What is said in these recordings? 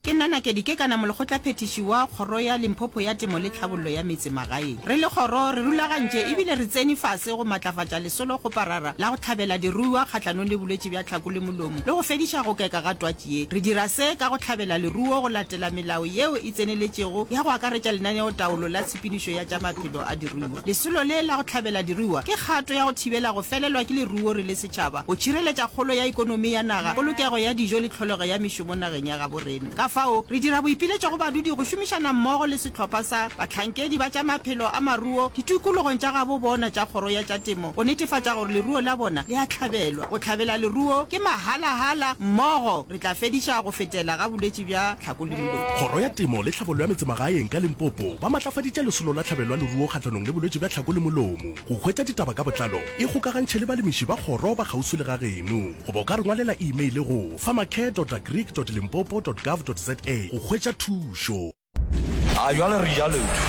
Ke nna Nakedi Kekana, molekgotlaphethiši wa Kgoro ya Limpopo ya Temo le Tlhabollo ya Metse Magaeng. Re le kgoro re rulagantše e bile re tsene fase go matlafatša lesolo kgoparara la go tlhabela diruiwa kgahlanong le bolwetši bja tlhako le molomo le go fediša go keka ga twatši ye. Re dira se ka go tlhabela leruo go latela melao yeo e tseneletšego ya go akaretša lenaneotaolo la tshepedišo ya tša maphelo a diruiwa. Lesolo le la go tlhabela diruiwa ke kgato ya go thibela go felelwa ke leruo re le setšhaba. tšhaba, go tšhireletša kgolo ya ekonomi ya naga, polokego ya dijo le tlholego ya mešomo nageng ya gabo rena. Ka fao, re dira boipiletšo go badudi go šomišana mmogo le sehlopha sa bahlankedi ba tša maphelo a maruo ditikologong tša gabo bona tša kgoro ya tša temo go netefatša gore leruo la bona le a hlabelwa. Go hlabela leruo ke mahala-hala, mmogo re tla fediša go fetela ga bolwetši bja tlhakolimlo. Kgoro ya Temo le Tlhabollo ya Metsemagaeng ka Limpopo ba matlafaditše lesolo la tlhabelo ya leruo kgahlanong le bolwetši bja tlhakoli-molomo. Go hwetša ditaba ka botlalo, ikgokagantšhe le balemiši ba kgoro ba kgauswi le ga geno goba o ka re ngwalela imeile go, farmercare.agric.limpopo.gov.za, go hwetša thušo. A jwale re jalotšwe,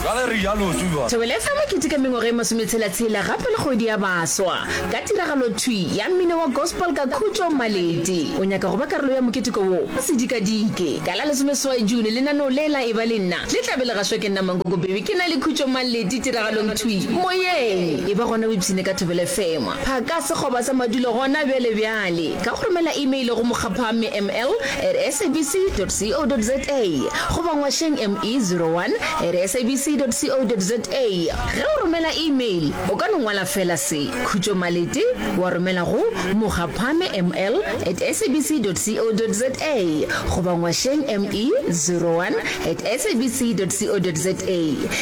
jwale re jalotšwe jwale. Thobela FM e keteka mengwaga e masometshela-tshela gape le kgwedi ya baswa ka tiragalo thwi ya mmino wa gospel ka Khutšo Maleti. O nyaka go ba karolo ya moketeko wo? Ka sedikadike, ka la lesomeseswai June, lenaneo le la Eba le Nna le tla be le gašwa ke nna Mankoko Bebe ke na le Khutšo Maleti. Ditiragalong thwi, Moyeng, e ba gona o ipshine ka thobela efengwa. Phaka sekgoba sa madulo gona bjale bjale ka go romela imeile go mokgapha mml at sabc dot co dot za goba ngwašeng ME zero one at sabc dot co dot za. Ge o romela imeil o ka no ngwala feela se, Khutšo Malete, wa romela go mokgapha mml at sabc dot co dot za goba ngwašeng ME zero one at sabc dot co dot za.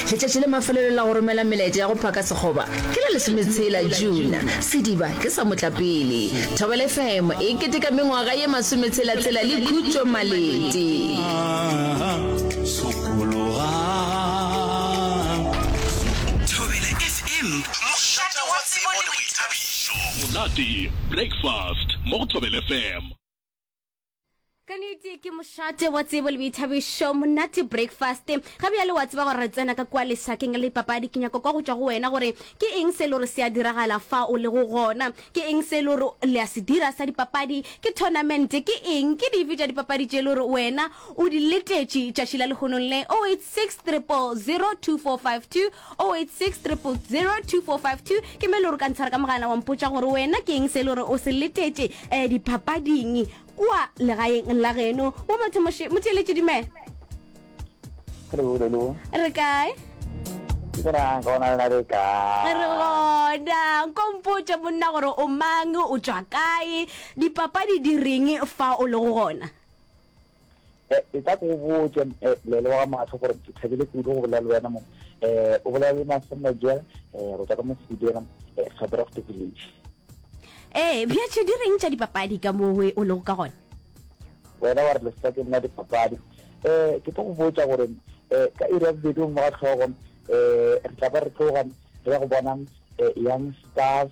Letšatši la mafelelo la go romela melaetša ya go phaka sekgoba ke la lesometshela, June. Sediba ke sa motlapele. Thobela FM e keteka mengwaga ye masometshela-tshela le Khutšo Malete. Thobela FM, mošate wa tsebo le boithabišo. Monate Breakfast mo go Thobela FM. ka nete ke mošate wa tsebo le boithabišo monate breakfast ga bjale wa tseba gore re tsena ka kua lesakeng la dipapadi ke nyako kwa go tšwa go wena gore ke eng se e le gore se a diragala fa o le go gona ke eng se e le gore le a se dira sa dipapadi ke tournamente ke eng ke dife tša dipapadi tše e le gore wena o di letetše tšatši la lehonong le 08600242 0860002452 ke me le gore ka ntshwara ka mogala wa mpotša gore wena ke eng se le gore o se letetše um diphapading kua legaeng la geno wa mathomoše motheeletše dumela re kae re gona nkompotša monna gore o mang o tswa kae dipapadi di reng fa o le go gona Eh, e tla ko botse eh, lele wa matlho gore ke thabile kudu go bolela le wena mo eh, o bolela le masemma jela eh, go tswa ka mosebidira eh, gabrofte village ee bjatšhe di reng tša dipapadi ka mowe o lego ka gona wena wa re leseka ke nna dipapadi um ke tlo go botsa gore um ka iri ya bobedi mo ga tlhogo um re tla ba re tloga re ya go bona um young stars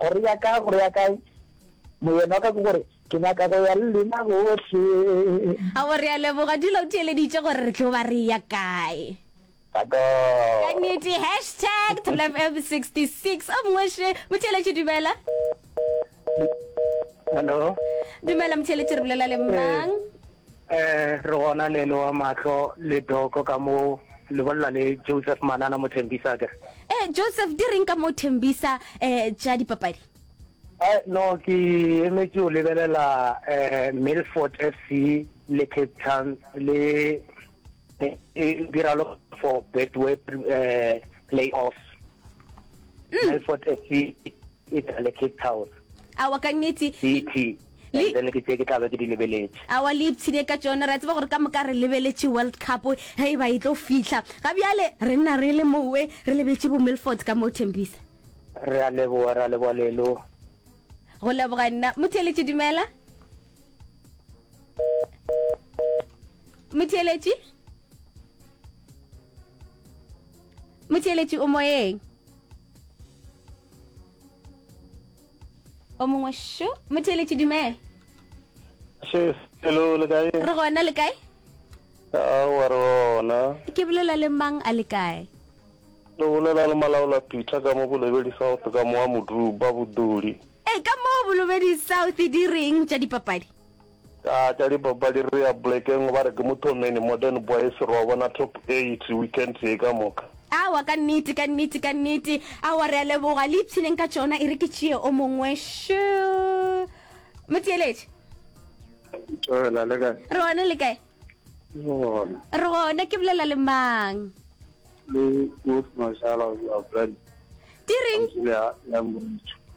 Go reya ka, go reya kae? Moyena wa ka ke gore, Ke nyaka go ya le lena bohle. A go reya Leboga dula o theeleditše gore re tlo ba reya kae? Tako. Ka nnete, hashtag Thulafm 66. O mongwe še, motheeletši dumela. Hello. Dumela motheeletši re bolela le mang? Ee, re gona le loa mahlo le doko ka mo le bolela le Joseph Manana mo Tembisa akere? Ee, Joseph di reng ka mo Tembisa eh tša dipapadi? Eh, no ke emetše o lebelela eh Milford FC le Cape Town le e dira lo for Betway eh playoffs. Milford FC e le Cape Town. Aowa ka nnete. BT. and then ke tse ke tla be ke di lebeletše. Aowa le ipshine ka tšona, re a tseba gore ka moka re lebeletše World Cup ge e ba e tlo fihla. Ga bjale re nna re le mowe re lebetše bo Milford ka moo, Thembisa. Re a leboga, re a leboga Lelo. Go leboga nna. Motheeletši dumela. Motheeletši? Motheeletši o moyeng? o mongwe šo motheeletši dumela hello le kae re gona le kae a wa re gona ke bolela le mang a le kae lo bolela le malaola peter ka mo bolebedi south ka moa moduba boduli e ka mo bolobedi south di reng tša dipapadi Ka tša dipapadi re ya polekeng ba re ke Mothomeni, Modern Boys, re wa bona Top Eight weekend ye ka moka. Aowa, ka nnete, ka nnete, ka nnete. Aowa, re a leboga. Le ipshineng ka tšona e re ke tšee o mongwe. Sure. Motheeletši. Tšoela, le kae? Re gona, le kae? Re gona. Re gona, ke bolela le mang? Le Wolf Mashala of your brand. Di reng?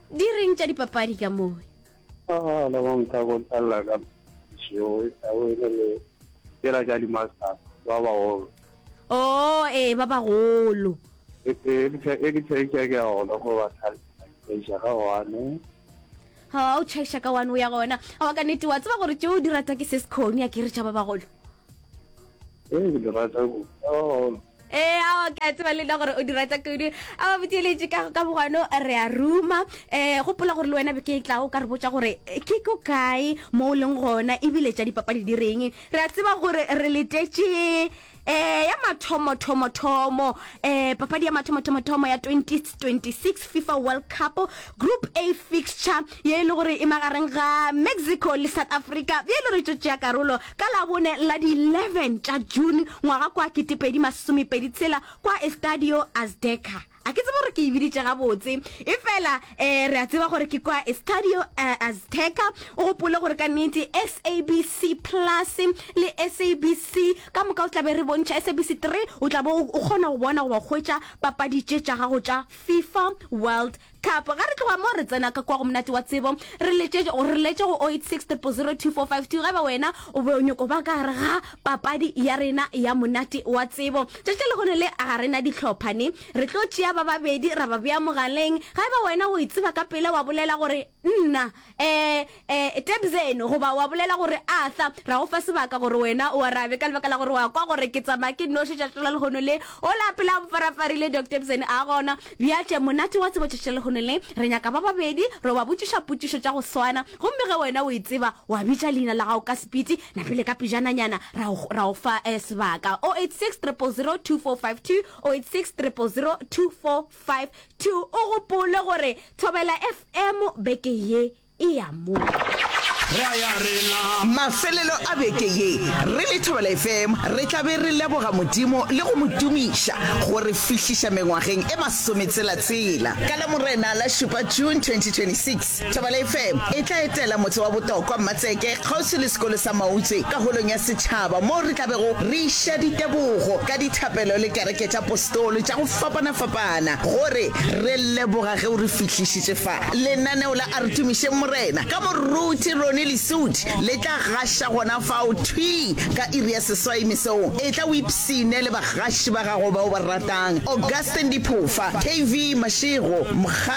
Di reng tša dipapadi ka mowe? Ah, la bang ka go talla ka šeo a wele le tsela tša dimasa ba ba go. Oh, ee ba ba golo. E e ke tla e ke tla e ke ya gona go ba thala. E ja ga one. Ha o chaisha ka one o ya gona. Ha wa ka nete wa tseba gore tšeo di rata ke se se khoni a ke re tša ba ba golo. ee ke di rata kudu oh. ee ao ke a tseba le nna gore o di rata kudu a ba botšeletše ka ka bogwano re a ruma um gopola gore le wena be ke e tlago ka re botsa gore ke ko kae mo o leng gona ebile tša dipapadi di reng re a tseba gore re letetše eh ya mathomo thomo thomo eh papadi ya mathomo thomo thomo ya 2026 FIFA World Cup group A fixture ye e le gore e magareng ga Mexico le South Africa ye e le gore tšo tšea karolo Ka Labone la di 11 tša June ngwaga kwa 2026 kwa Estadio Azteca. A ke tsebe gore ke e biditše gabotse, efela um re a tseba gore ke kwa Estadio Azteca. O gopole gore ka nnete SABC Plus le SABC ka moka o tla be re bontšha SABC 3, o tla bo o kgona go bona goba go hwetša papadi tše tša gago tša Fifa World Thapo, Ge re tloga mo re tsena ka kwa go Monate wa Tsebo, re letše, re letše go 0863002452 ge e ba wena o be o nyoko ba ka gare ga papadi ya rena ya Monate wa Tsebo. Tšatši la lehono le ga re na dihlopha ne. Re tlo tšea ba babedi ra ba bea mogaleng. Ge e ba wena o e tseba ka pela wa bolela gore, Nna. um Tebzeni, goba wa bolela gore, Arthur, ra go fa sebaka gore wena o arabe, ka lebaka la gore wa kwa gore ke tsamaya ke nnoši tšatši la lehono le. Ola pele a mpfarafarile, Doc Tebzeni a gona. Bja tše, monate wa tsebo tšatši la lehono le, re nyaka ba babedi re yo ba botšiša potšišo tša go swana, gomme ge wena o e tseba, wa bitša leina la gago ka sepiti, na pele ka pejananyana ra go, ra go fa um sebaka. 086 000 2452, 086 000 2452. Five, two, O gopole gore Thobela FM beke ye e ya mo. Mafelelo a beke ye re le Thobela FM re tla be re leboga Modimo le go mo tumiša go re fihliša mengwageng e masometselatsela. Ka Lamorena la šupa, June 2026, Thobela FM e tla etela motse wa botokwa Mmatseke kgauswi le sekolo sa Mautswe ka Holong ya Setšhaba moo re tla bego re iša ditebogo ka dithapelo le kereke tša postolo tša go fapana-fapana gore re leboga ge o re fihlišitše fa. Lenaneo la A Re Tumišeng Morena ka moruti Ronnie Lesudi le tla gaša gona fao thwi ka iri ya seswai mesong. Etla o ipshine le bagaši ba gago ba o ba ratang, Augustine Diphofa, KV Mashego, Mokgadi,